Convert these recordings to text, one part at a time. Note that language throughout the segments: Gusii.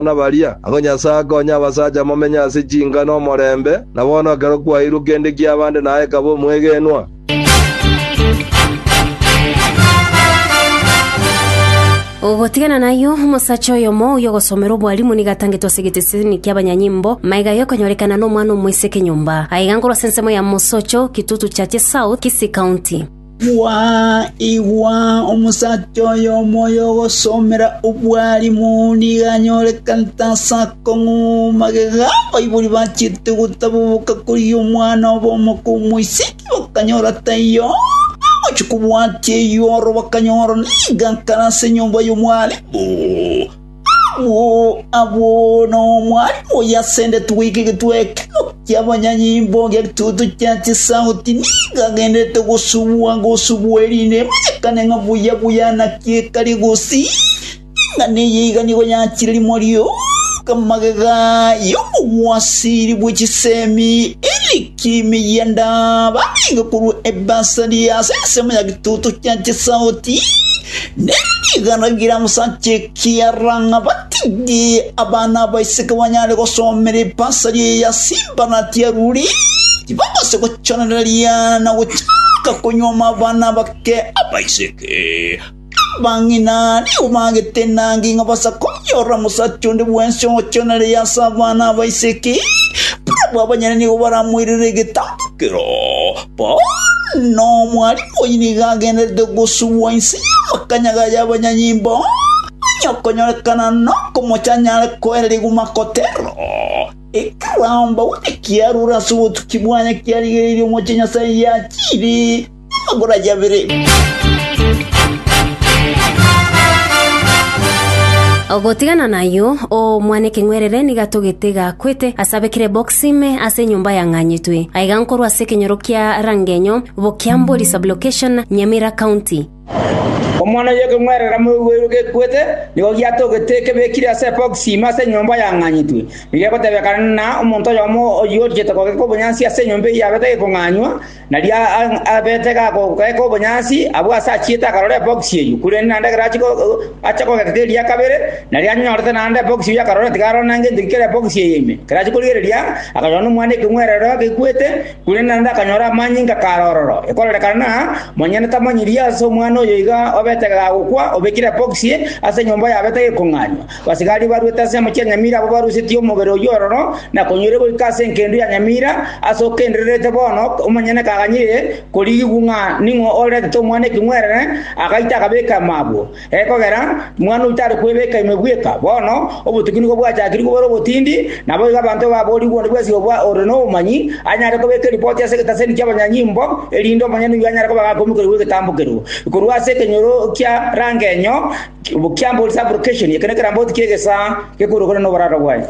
na baria, ang'o Nyasae akonye abasacha momenye ase chinka nomorembe, na bono ekero kwairwe kende kiaba nde naye kaba omwegenwa. Gotigana nayio, omosacha oyomo oyio ogosomerwa obwalimu nigo atangetwe ase egeteseni kiabanyanyimbo, maiga aye okonyorekana nomwana omoiseke nyomba. Aiga nkorwa ase ensemo ya Mosocho, Kitutu Churches South, Kisii County. Igwa, igwa! Omosacha oyo omoyo ogosomera obwalimu nigo anyorekanete ase akong'u magega. Baibori bachiete gotaboboka koria omwana obo omoko omoiseke, bakanyora taiyo. Bagochia kobwatia eyioro, bakanyora nigo akare ase enyomba y'omwalimu. Abwo n'Omwalimu oyio asendeti goika egetwe ekero ki'abanyanyimbo ng'egitutu kia chisauti, nigo agendererete gosubwa gosubwa, erinde emanyekane ng'a buya buya enaki ekari gosii, ing'ana eye iga nigo yachire rimo rioka magega y'obogwasiri bwe chisemi, Eric. Chimiya ndaba nigo korwa ebasari ase ensemo ya gituto kia chisauti, ne rigana rigira mosacha ekiara ng'a batige abana abaiseke banyare gosomera ebasari eya Simba na Tiaruri, tibabase gochorereria na gochaka konyuoma abana abake abaiseke. Abang'ina nigo baagete enanga ing'a basakorie oramosacha onde bwensi ogochoonereria ase abana aba ise ki? Barabwo abanyene nigo baramoirere egetambokero. Bono omwarimu oyio nigo agendererete gosubwa inse y'amakanyaga y'abanyanyimbo, onye okonyorekana nokomocha anyare koereria Gumakotero, ekerambe onye kiarure ase obotuki bwaye kiarigereirie omochie Nyasae yachiire. Magoro aye abere. Gotigana nayio, omwana ekeng'werere nigo atogete gakwete ase abekire eboxi ime ase enyomba yang'anyetwe. Aiga nkorwa ase ekenyoro kia Rangenyo, Bokiambori Sublocation, Nyamira County. Omwana oyo ekeng'werere amoigweirwe gekwete nigo giatogete ekebekire ase eboxi ime ase enyomba yang'anyetwe. Nigo egotebekana na omonto oyomo oyio oriete kogeka obonyansi ase enyomba eyio yabete gekong'anywa, Nari abete gakogeeka obonyansi, abwo aase achiete akarora ebokisi eyio, korende naende ekero ache kogeeka keria kabere, nari anyorete naende ebokisi eyio akarora tigarora na gento kere ebokisi eye ime. Ekero achia korigereria, akanyora nomwana ekeng'werero agekwete, korende naende akanyora amanyinga kare ororo. Ekorerekana na monyene tamanyirie ase omwana oyo iga obete gagokwa, obekire ebokisi ase enyomba yabete gekong'anywa. Abasigari barwete ase enyamochi ya nyamira abwo barusetie omobere oyio ororo na konyoire goika ase engendu ya nyamira, ase okendererete bono omonyene kaganyire korigigwa ng'a ning'o oretete omwana ekeng'werere, agaita akabeka ime abwo. Ekogera mwana oyio tare kwebeka ime bweka, bono obotuki nigo bwachakire kobera obotindi, naboigo abanto baborigwe onde bwensi oyo ore nobomanyi anyare kobeka eripoti ase egetaseni ki'abanyanyimbo, erinde omonyene oyio anyare koba gakoimokerigwa egetambo keria korwa ase ekenyoro kia rangenyo. Obokiambo is application ye kende keramboti ki'egesaa gekoirokana noboraga bwaye.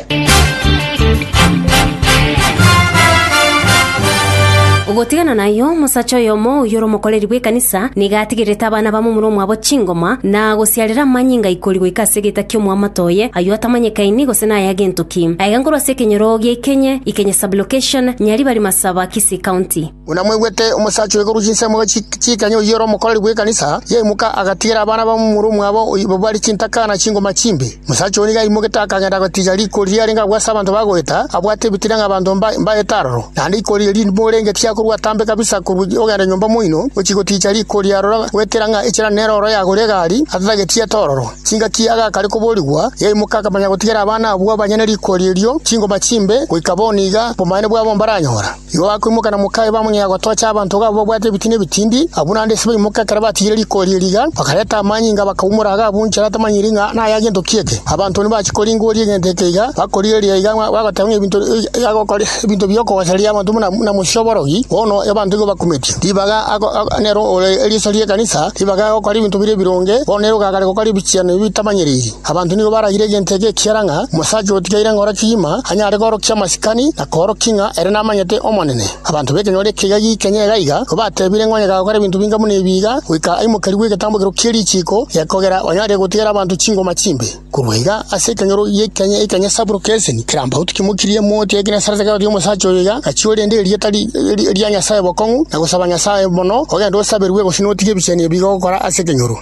Gotigana nayio, omosacha oyomo oyore omokoreri bw'ekanisa nigo atigererete abana bamomura omwabo chingoma, na gosiarera amanyinga ikori goika ase egeita ki'omwamato oye, ayio atamanyekaini gose naye agento ki. Aiga nkorwa ase ekenyoro gia Ikenye, Ikenye Sub-location, Nyaribari Masaba, Kisii County. Buna mwaigwete omosacha oigorwa chinsemo chi'ekenya oyio ore omokoreri bw'ekanisa, yaimoka agatigera abana b'omomura omwabo oyio babare chintaka na chingoma chimbe. Omosacha oyio nigo aimogeite akagenda agatiga riko riria arenge agwase abanto ba goeta, abwate ebitina ng'a abanto mbaete aroro. Naende riko riria rimbe orenge tiakorua atambe kabisa korwa ogenda nyomba moino, gochia goticha riko ria aroro goetera ng'a echela nere oro yagore egari atatageti ete ororo. Chingaki agakare koborigwa, yaimoka akamanya gotigera abana abwo abanyene riko erio chingoma chimbe, goika bono iga obomanene bwabo mbaranyora. Igo bakoimoka na mokaye bamonyega gotocha abanto iga babwate ebitina ebitindi, abwo naende ase baimoka ekero batigire riko erio riga, bakareta amanyinga bakaumora iga abwo inche natamanyiri ng'a naya gento ki eke. Abanto nibachie koringoria egento eke iga, bakorigereria iga ng'a bagoteba ng'a ebinto iga agokora ebinto bi'okogosereria abanto buna buna mochie oborogi, bono abanto igo bakumeti. Ribaga ago nere ore eriso ri'ekanisa, ribaga agokora ebinto bire ebironge, bono nere ogakare gokora ebichiano ebi bitamanyeriri. Abanto nigo baragire egento eke ekiagera ng'a omosacha otigaire ngoro kegima anyare korokia amasikani, Akaorokia ng'a ere namanyete Omonene. Abanto b'ekenyoro ekiya giikenya iga iga kobatebire ng'a onye gakora ebinto binga buna ebi iga, goika aimokerigwe egetambokero kie richiiko, gekogera onyare gotigera abanto chingoma chimbe. Korwa iga ase ekenyoro giikenya ekiya Saburo Keseni kerampauti kimokirie emoti ya Genesarete ekarotithia omosacha oyo iga, Gachia orende erieta ria Nyasae bokong'u, na gosaba Nyasae mono, ogende osaberwe gose notige ebicheni ebi gokora ase ekenyoro.